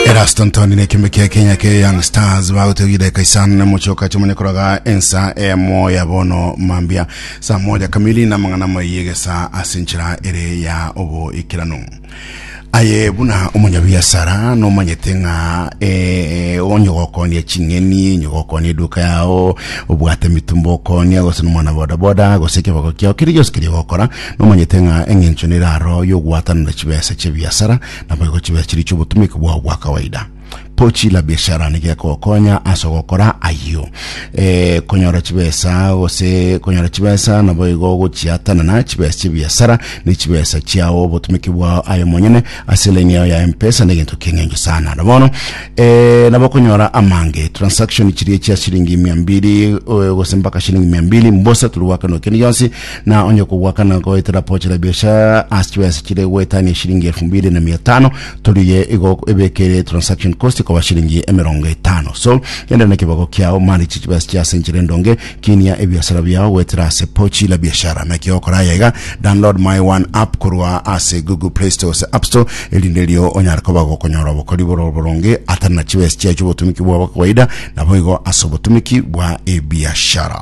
Erasto Ntoni na ekiombe kia Kenya kia Young Stars bagotogire Kaisan na Muchoka chimone koroga ensa emo ya bono mambia saa moja kamili na mang'ana maiye saa ase enchera ere ya oboikeranu aye buna omonyabiasara nomanyete ng'a eh, onye gokonia ching'eni onye gokonia eduka yao obwate mitumba okonia gose nomwana bodaboda gose ekeboko kiao kiri gionsi kiri gokora Nomanyete ng'a engencho nere aro y'ogwatanera chibesa chi'ebiasara, naboigo chibesa chiria chi'obotumiki bwao bwa kawaida. Pochi la Biashara nigo egokonya ase ogokora ayio. Eh, konyora chibesa gose konyora chibesa naboigo gochiatanana chibesa chi'ebiasara ne chibesa chiao obotumiki bwao aye omonyene ase elaini yao ya M-pesa negento ki'engencho sana. Na bono eh, nabo okonyora amange, transaction chiria chia shilingi mia mbili, eh, gose mpaka shilingi mia mbili, mbosa turi gwakana ekende gionsi, na onye okogwakana goetera pochi la biashara ase chibesa chire goetania eshilingi elfu mbili na mia tano toriye igo ebekere transaction cost koba shilingi emerongo etano so genda na ekebago kiao manage chibesa chia ase enchera endonge kinia ebiasara biao goetera ase pochi la biashara naki okora aya iga download my one app korwa ase google play store ase app store erinde erio onyare koba gokonyora obokori bore oboronge atari na chibesa chiaye chiobotumiki bwabo kawaida naboigo ase obotumiki bwa ebiashara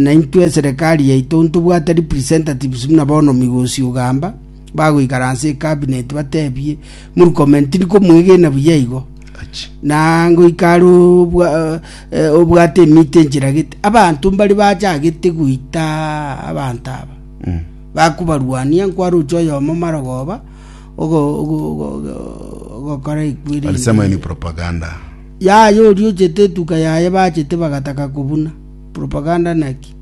naintwe eserekari yaito ntobwate representatives buna bono migosi ogamba bagoikara ase ecabinet batebie Murkomen tindi komwegena buya igo na ngoika are obwa- eh, obwate emito enchiragete abanto mbari bachagete goita abanto aba bakobarwania nkwaroche oyomo marogoba ogo- ogo- ogo- ogo- ogokora ekweri Alisema hii ni propaganda. Yaya oriochete etuka yaye bachete bagataka kobuna. Propaganda naki?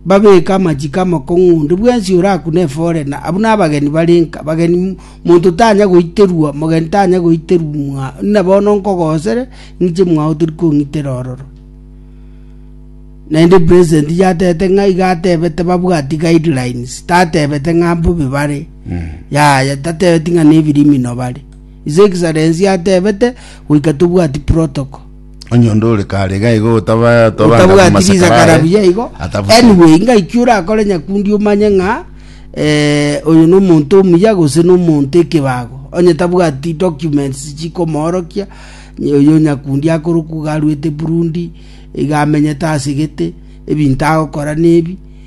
Babeke amachiko amakong'u onde bwensi orakune efore na abu nabageni barenka bageni monto tanya goiterwa mogeni tanya goiterwa mwa na bono nkogosere ng'iche mwao tori kong'itera ororo. Naende president yatete ng'a iga atebete babwati guidelines tatebete ng'a mbobe bare. Yaya tatebeti ng'a nebirimino bare. His Excellency atebete goika tobwati protocol. Onye onde ore kare iga igo otabaa- toba anga otabwati komasakara risakara aye, buya igo atabusire. anyway ngaki orakore nyakundi omanye ng'a eh, oyo nomonto omuya gose nomonto ekebago onye tabwati documents chikomoorokia ny- oyo nyakundi akorokwa iga arwete burundi iga amenyete asegete ebinto agokora nebi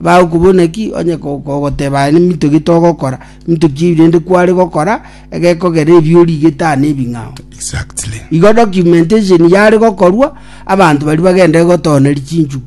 Bagokobuna ki onye kogoteba aye neminto ki togokora, minto ki ebi rende kware gokora egekogera ebi origete aa nebing'ao. Exactly. Igo documentation yare gokorwa abanto bari bagenderere gotooneria chinchuku.